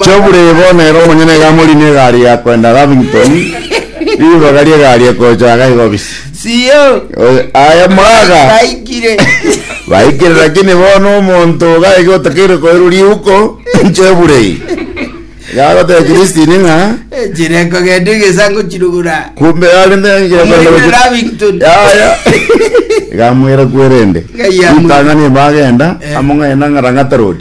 Chiaburei bono ere omonyene iga amorine egari ya koenda Lavington, ribaga ri'egari ekocha iga igo bisi. Sio. Oy- Aye mwaga. Baikire. Baikire lakini bono omonto iga iga otakeire koirwa riuko, Chiaburei. Iga agoteba Christine ng'a, Chire kogenda egesango chirugura. kumbe yare ndengire Omorine koenda Lavington. Yaya. Iga amwera kwerende. Iga yamwera. Itang'ani bagenda, Eh. among'aina ng'arang'ata road.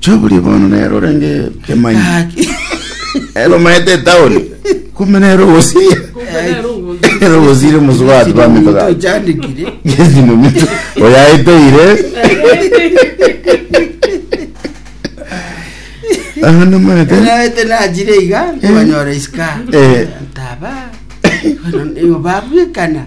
Choburi bono nero orenge kemanyi. Gaki. Ero maete etaoni. Kumbe nero ogosiria. Nero ogosiria omosubati bamito gaki. Ochandikire. Gezino mito. Oyaeteire. Aha namaete. Naete nachire iga, nkonyora isika. Eh. Taba. Oyo babwekana.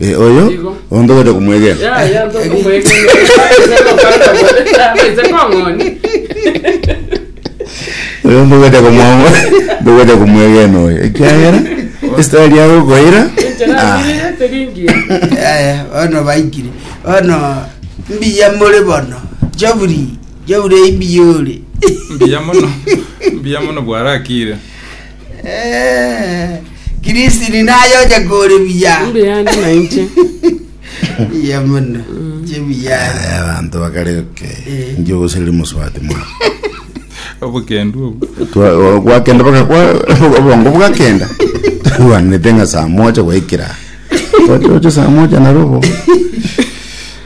Eh, oyo ontogete kumwegera oyo ontogete kumwamo ntogete kumwegena oyo ekiagera esitari yago okoira ah, Eh, bono baikire bono mbiya more bono jaburi jaburi imbiya ore mbuya mono mbuya mono bwarakire Kirisini naye onya kore buya. Mbe yandi na inche. Iya mono. Chibuya. Eh, abanto bakare ke nje ogosiriri mosubati mwa obokendu obo Twa- o- gwakenda baka- gwa- obongo bwakenda twanete ng'a saa moja gwaikira oche oche saa moja narobo